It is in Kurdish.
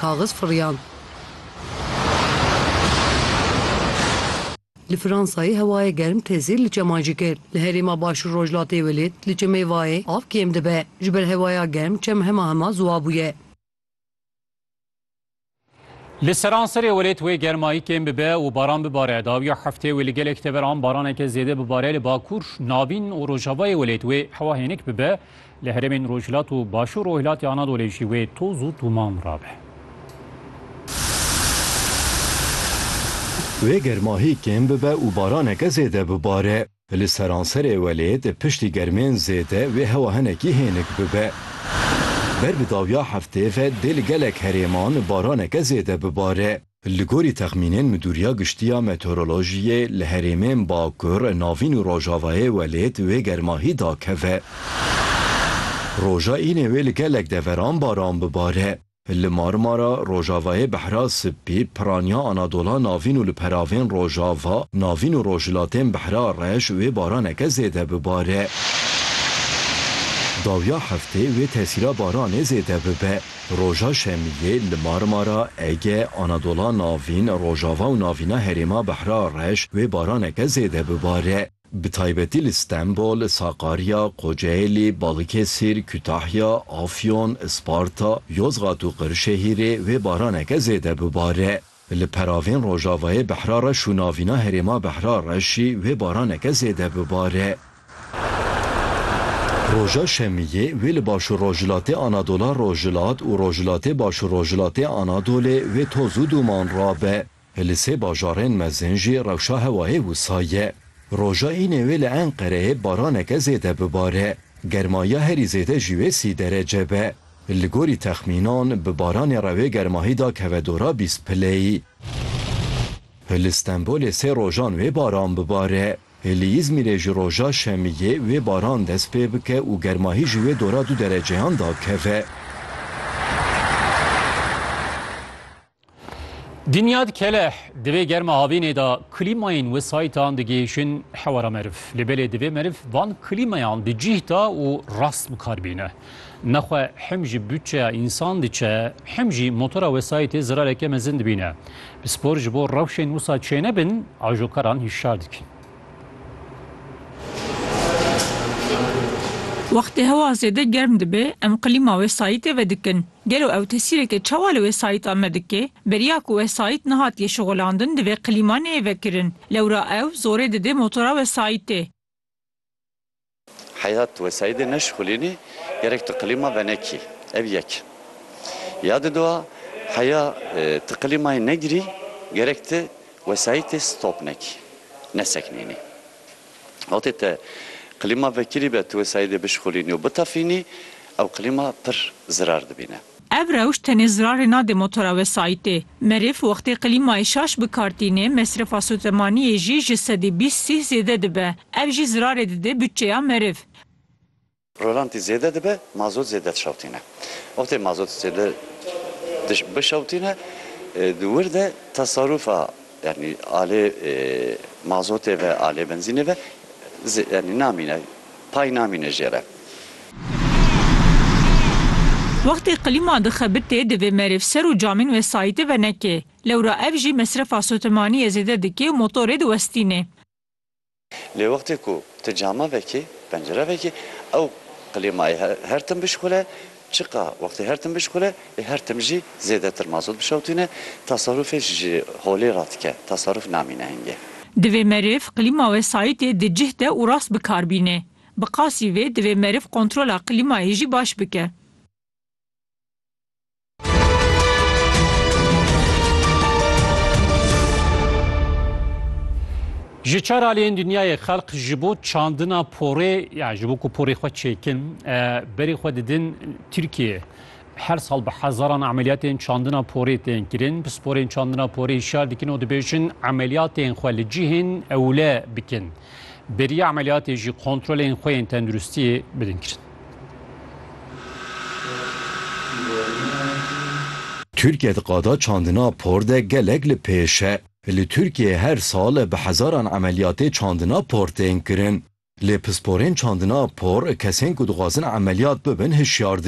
Kaxiz firiyand. Li Fransayê hewayê germ tê zêr li çeman jî kir. Li herêma Başûr Rojhilatê Welêt li çemê Vayê av kêm dibe. Ji ber hewaya germ çem hema hema ziwa bûye. Li seranserê Welêt wê germayî kêm bibe û baran bibare. Dawiya heftê wê li gelek teveran baraneke zêde bibare li Bakûr, Navîn û Rojavayê Welêt wê hewa hênik bibe. Li herêmên rojhilat û başûr rojhilatê Anadolê jî wê toz û tûman rabe. Wê germahî kêm bibe û baraneke zêde bibare. Li seranserê welêt piştî germên zêde wê hewa hinekî hênik bibe. Ber bi dawiya heftê ve dê li gelek herêman baraneke zêde bibare. Li gorî texmînên Midûriya Giştî ya Meteorolojiyê li herêmên Bakur, Navîn û Rojavayê welêt wê germahî dakeve. Roja înê wê li gelek deveran baran bibare. Li Marmara, Rojavayê Behra Sipî, Piraniya Anadola Navîn û li peravên Rojava, Navîn û Rojhilatên Behra Reş wê baraneke zêde bibare. Dawiya heftê wê tesîra baranê zêde bibe. Roja Şemiyê li Marmara, Ege, Anadola Navîn, Rojava û Navîna Herêma Behra Reş wê baraneke zêde bibare. Bi taybetî li Stenbol, Sakarya, Kocaelî, Balıkesir, Kütahya, Afyon, Isparta, Yozgat û Qirşehîrê wê baraneke zêde bibare. Li peravên rojavayê Behra Reş û navîna herêma Behra Reşî wê baraneke zêde bibare. Roja şemiyê wê li başûrrojhilatê Anadola Rojhilat û rojhilatê başûrrojhilatê Anadolê wê toz û dûman rabe. Li sê bajarên mezin jî rewşa hewayê wisa ye. Roja înê wê li Enqereyê baraneke zêde bibare. Germayiya herî zêde jî wê sî derece be. Li gorî texmînan bi baranê re wê germahî da keve dora bîst pileyî. Li Stenbolê sê rojan wê baran bibare. Li Îzmîrê ji roja şemiyê wê baran dest pê bike û germahî ji wê dora du dereceyan da keve. Dinyad Keleh, Di vê germa havînê de klîmayên wesayîtan digihîşin hewara meriv. Lê belê divê meriv van klîmayan di cîh de û rast bikar bîne. Nexwe him ji butçeya însan diçe him jî motora wesayîtê zirareke mezin dibîne. Pispor ji bo rewşên wisa çênebin ajokaran hişyar dikin. Wextê hewa zêde germ dibe em klîma wesayîtê vedikin. Gelo ew tesîreke çawa li wesayîta me dike? Beriya ku wesayît nehatiye şixulandin divê qilîma neyê vekirin. Lewra ew zorê dide motora wesayîtê. Heyhat wesayîdê neşixulînî gerek tu qilîma venekî. Ev yek. Ya di dua heya tu qilîmayê negirî gerek tu wesayîtê stop nekî, neseknînî. Wextê te klîma vekirî be, tu wê Seîdê bişixulînî û bitefînî, ew klîma pir zirar dibîne. Ev rewş tenê zirarê nade motora wê Seîdê. Merîv wextê klîmayê şaş bikartînê, mesrefa sotemaniyê jî ji sedî bîst sîh zêde dibe. Ev jî zirarê dide butçeya merîv. Rolantî zêde dibe, mazot zêde dişewtîne. Wextê mazot zêde bişewtîne di wir de tesarûfa yanî alê mazotê ve, alê benzînê ve yanî namîne, pay namîne jê re. Wextê qilîma dixebitê divê merêv ser û camên wesayîtê venekê. Lewra ev jî mesrefa sotemaniyê zêde dike û motorê diwestîne. Lê wextê ku ti cama vekî, pencere vekî, ew klîmayê her tim bişixule, çiqa wextê her tim bişixule, ê her tim jî zêdetir mazot bişewtîne, tasarûfê ji holê radike, tasarûf namîne hingê. Divê meriv klîma wesayîtê di cih de û rast bi kar bînê. Bi qasî vê divê meriv kontrola klîmayê jî baş bike. Ji çar aliyên dinyayê xelq ji bo çandina porê ya ji bo ku porê xwe çêkin berê xwe didin Tirkiye. Her sal bi hezaran emeliyatên çandina porê tên kirin. Pisporên çandina porê şar dikin û dibêjin emeliyatên xwe li cihên ewle bikin. Beriya emeliyatê jî kontrolên xwe yên tenduristiyê bidin kirin. Tirkiye di qada çandina por de gelek li pêş e. Li Tirkiyeyê her sal bi hezaran emeliyatê çandina por tên kirin. Lê pisporên çandina por kesên ku dixwazin emeliyat bibin hişyar